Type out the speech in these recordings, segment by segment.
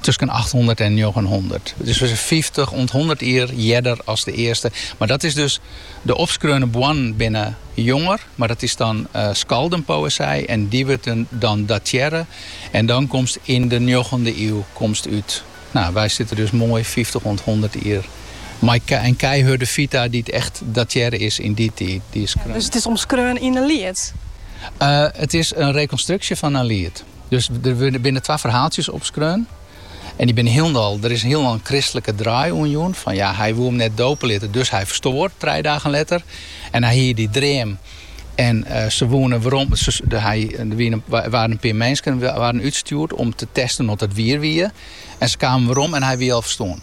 tusken achthûndert en njoggenhûndert. It is fyftich oant hûndert jier earder as de earste. Mar dat is dus, de opskreaune boarnen binne jonger, mar dat is dan skaldenpoëzij en dy wurdt dan datearre en dan komst yn de njoggende iuw komst út. Nou, wy sitte dus moai fyftich oant hûndert jier mei in keihurde fita dy't echt datearre is yn dy tiid. Dus it is omskreaun yn in liet? It is in rekonstruksje fan in liet. Dus der binne twa ferhaaltsjes opskreaun. En dy binne hielendal, der is hielendal in kristlike draai oan jûn. Fan ja, hy woe him net dope litte, dus hy ferstoar trije dagen letter. En hy hie dy dream en se woene werom, de, hy, der wiene, waarden in pear minsken waarden útstjoerd om te testen oft it wier wie. En se kamen werom en hy wie al ferstoarn.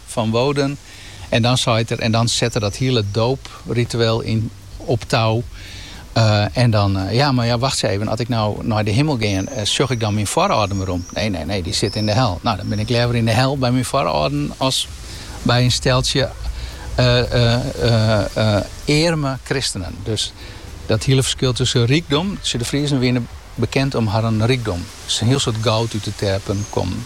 fan Woden en dan seit er en dan set er dat hiele doopritueel op tou en dan ja, mar ja, wachtsje even, as ik no nei de himmel gean, sjoch ik dan myn foarâlden werom? Nee, nee, nee, dy sitte yn de hel. No, dan bin ik leaver yn de hel by myn foarâlden as by in steltsje earme kristenen. Dus dat hiele ferskil tusken rykdom, de Friezen wiene bekend om harren rykdom, hiel soad goud út de terpen kommen.